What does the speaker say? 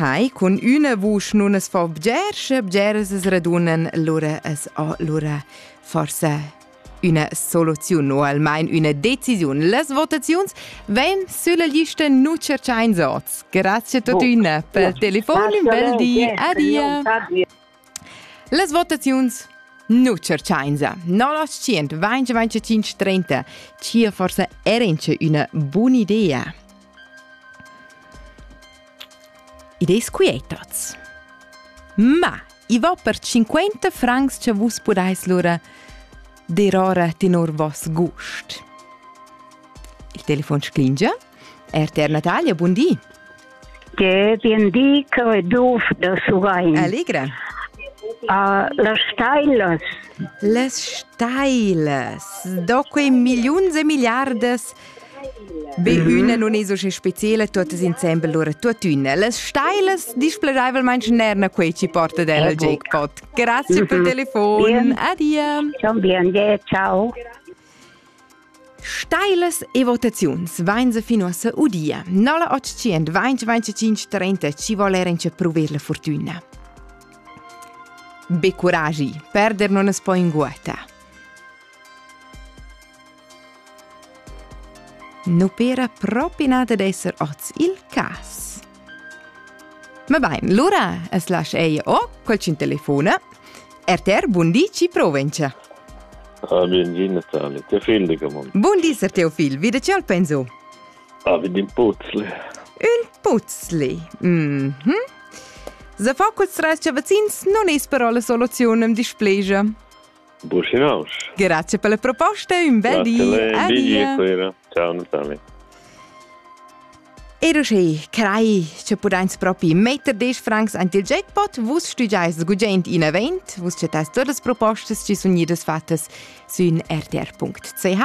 Hai, cun üna vusch nun as fo bger, sche bgeras as radunan lura as ho lura forsa üna soluziun o almain üna decisiun. Las votaziuns vain sülla lista nu tscherchains oz. Grazia totüna pel telefon, ün bel di, adia! Las votaziuns nu tscherchainsa. No la tschient, vainch vainch trenta. Chia forsa erence üna bun'idea. Idees quietats. Ma, i va per 50 francs che vus podais lura derora tenor vos gust. Il telefon sclingia RTR Natalia, bun di. Ge bien di, Creduf da Surain. Allegra. Uh, las stailas. Les stailas. Do quei miliuns e miliardas Be mhm. üna non es usche speciele, tuttas insembel lura tuttüna. Las stailas displegaivelmaing nerna quei ci porta del eh, jackpot. Grazie per mhm. telefon. Adia. Ciao bien, ciao. Stailas e votaziuns vain se fin uossa udia. 0800 2025 30 ci vole renci pruver la fortuna. Be curagi, perder non es poi in guata. Non pera propi nada d'esser oz il cas. Ma bain, lura es lasch eir o qualchün telefona. RTR Bundi ci provencia. Ah, bien gì Natale, te fil de camon. Bundi ser teo fil, vide ce al penso? Ah, vedi un puzzle. Un puzzle. Mhm. Mm Se fa culs trais chavazins non es però la soluziun am displegia. Businausch. Grazie per le proposte, un bel di. Un bel Ciao Natale. E uschè crei che pudains propi metter desch francs ant il jackpot, vus stugiais gugent in event, vus chattais todas propostas chi sun idas fattas sün rtr.ch